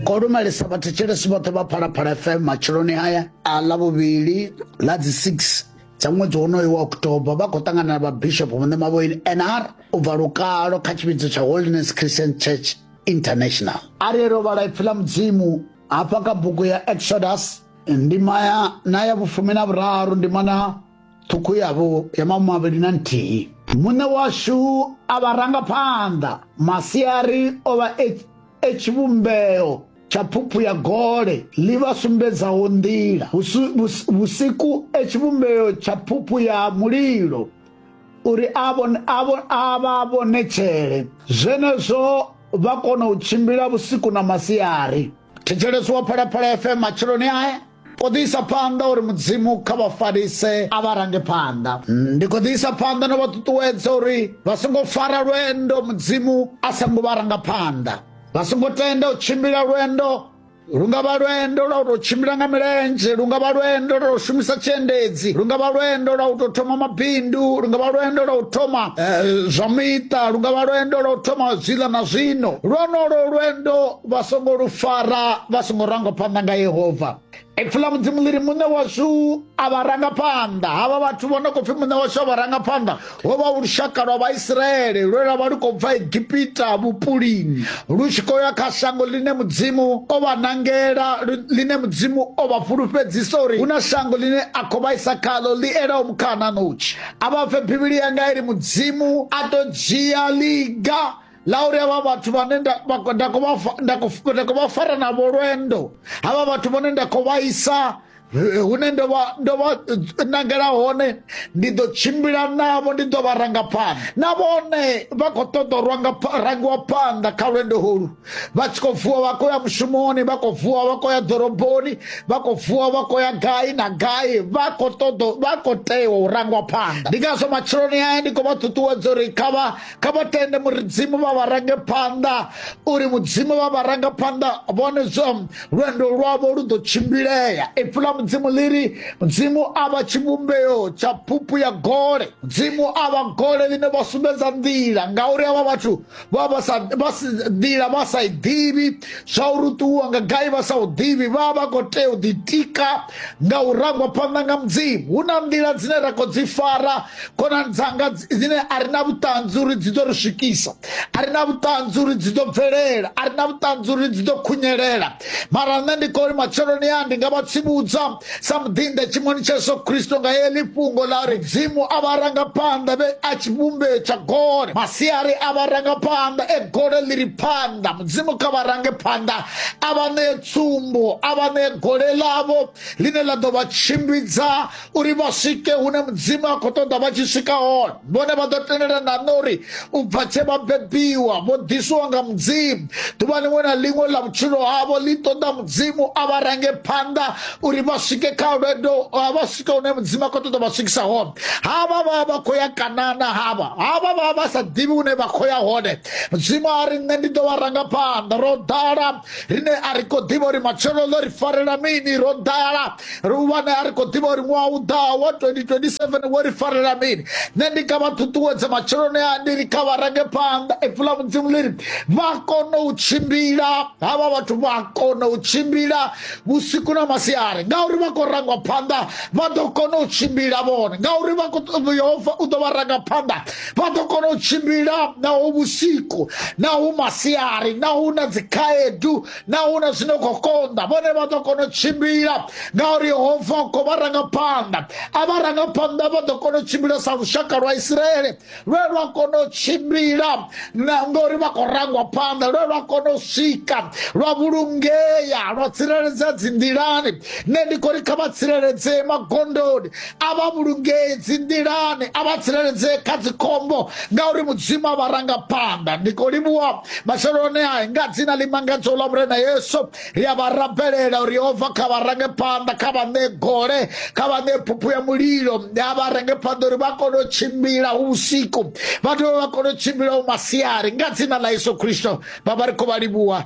ko lumelisa vhathetshelesi vhoṱhe vha phalaphala fm matshiloni haya a ḽa vhuvhili ḽa dzi 6 dza ṅwedzi wonoyo wa oktoba vha khou ṱangana na vhabishop vhune mavhoini nr u bva lukalo kha tshivhidzo tsha holiness christian church international a ri ro vhala ipfi ḽa mudzimu hafha kha bugu ya exodus ndima ya na ya vhufumi na vhuraru ndima na ṱhukhu yavho ya mamavhili na nthihi muṋe washu a vha rangaphanḓa masiari o vha e, e tshivhumbeo tsha phuphu ya gole ḽi vha sumbedzaho nḓila vhusiku e tshivhumbeo tsha phuphu ya mulilo uri a vha vhonetshele zwenezwo vha kona u tshimbila vhusiku na masiari thetsheleswa phalaphala fm matsheloni ae O ḓi isa phanḓa uri Mudzimu kha vha farise a vha range phanḓa. Ndi khou ḓi isa phanḓa na vha ṱuṱuwedza uri vha songo fara lwendo Mudzimu a sa ngo vha ranga phanḓa. Vha songo tenda u tshimbila lwendo lu nga vha lwendo lwa u tou tshimbila nga milenzhe lu nga vha lwendo lwa u shumisa tshiendedzi lu nga vha lwendo lwa u tou thoma mabindu lu nga vha lwendo lwa u thoma eh, zwa miṱa lu nga vha lwendo lwa u thoma zwiḽa na zwino lwonolo lwendo vha songo lu fara vha songo ranga phanḓa nga yehova ipfi ḽa mudzimu ḽi ri muṋe washu a vha ranga phanḓa havha vhathu vho no khou pfi muṋe washu a vha ranga phanḓa ho vha u lushaka lwa vhaisraele lwe lwa vha lu khou bva egipita vhupulini lu tshi khou ya kha shango ḽine mudzimu o vha nangela ḽine mudzimu o vha fhulufhedzisa uri hu na shango ḽine a khou vhaisa khaḽo ḽi elaho mukhana notshi a vha pfe bivhili yanga i ri mudzimu a ḓo dzhia ḽiga lauri havha vhathu vhane nda khou vha fara navho lwendo havha vhathu vhane nda khou vhaisa eh, hune ndo vha ndo vha eh, nangela hone ndi ḓo tshimbila navho ndi ḓo vha ranga phanḓa na vhone vha khou ṱoḓa u ranga rangiwa phanḓa kha lwendo holu vha tshi khou vuwa vha khou ya mushumoni vha khou vuwa vha khou ya ḓoroboni vha khou vuwa vha khou ya gai na gai vha khou ṱoḓa vha khou tea u rangwa phanḓa ndi ngazwo matsheloni aya ndi khou vha ṱuṱuwedza uri kha vha kha vha tende mudzimu vha vha range phanḓa uri mudzimu vha vha ranga phanḓa vhone zwo lwendo lwavho lu ḓo tshimbilea ipfi la mudzimu ḽi ri mudzimu a vha tshivhumbeo tsha phuphu ya gole mudzimu a vha gole ḽine vha sumbedza nḓila ngauri avha vhathu vha vha sa vha si nḓila vha sa i ḓivhi zwa uri ṱuwa nga gai vha sa u ḓivhi vha vha khou tea u ḓitika nga u rangwa phanḓa nga mudzimu hu na nḓila dzine ra khou dzi fara khonani dzanga dzine a ri na vhuṱanzi uri dzi ḓo ri swikisa a ri na vhuṱanzi uri dzi ḓo bvelela a ri na vhuṱanzi uri dzi ḓo khunyelela mara nṋe ndi kori matsheloni ya ndi nga vha tsivhudza sa muḓinḓa tshimoni tsha yesu khristo nga heḽi fhungo ḽa ri dzimu a vha rangaphanḓa vhe a tshivhumbeo tsha gole masiari a vha rangaphanḓa e gole ḽi ri phanḓa mudzimu kha vha range phanḓa a vha ṋee tsumbo a vha ṋee gole ḽavho ḽine ḽa ḓo vha tshimbidza uri vha swike hune mudzimu a khou ṱoḓa vha tshi swika hone vhone vha ḓo tendela na nṋe uri u bva tshe vha bebiwa vho ḓisiwa nga mudzimu ḓuvha liṅwe na liṅwe ḽa vhutshilo havho ḽi ṱoḓa mudzimu a vha range phanḓa uri vha swike kha lwendo vha swike hune mudzimu a khou ṱoḓa vha swikisa hone havha vha vha khou ya kanana havha havha vha vha sa ḓivhi hune vha khou ya hone mudzimu a ri nṋe ndi ḓo vha ranga phanḓa ro ḓala rine a ri khou ḓivha uri matshelo ḽo ri farela mini ro ḓala ri u wane a ri khou ḓivha uri ṅwaha u ḓaho wa 2027 wo ri farela mini nṋe ndi nga vha ṱuṱuwedza matsheloni a ndi ri kha vha range phanḓa ipfi ḽa mudzimu ḽi ri vha kone u tshimbila havha vhathu vha kone u tshimbila vhusiku na masiari ngauri vha khou rangwa phanḓa vha ḓo kona u tshimbila vhone ngauri yehova u ḓo vha ranga phanḓa vha ḓo kona u tshimbila naho vhusiku naho masiari naho na dzikhaedu na huna zwino khou konḓa vhone vha ḓo kona u tshimbila ngauri yehova u khou vha rangaphanḓa a vha rangaphanḓa vha ḓo kona u tshimbila sa lushaka lwa isiraele lwe lwa kona u tshimbila na ngori vha khou rangwa phanḓa lwe lwa kona u swika lwa vhulungea lwa tsireledzea dzinḓilani nṋe ndi khou ri kha vha tsireledzee magondoni a vha vhulungee dzi nḓilani a vha tsireledzee kha dzikhombo ngauri mudzimu a vha ranga phanḓa ndi khou livhuwa matsheloni a nga dzina ḽi mangadzaho ḽa vhurena yesu ri a vha rabelela uri yehova kha vha range phanḓa kha vha ṋee gole kha vha ṋee phuphu ya mulilo a vha range phanḓa uri vha kone u tshimbila hu vhusiku vha dovhe vha kone u tshimbila hu masiari nga dzina ḽa yesu khristo vha vha ri khou vha livhuwa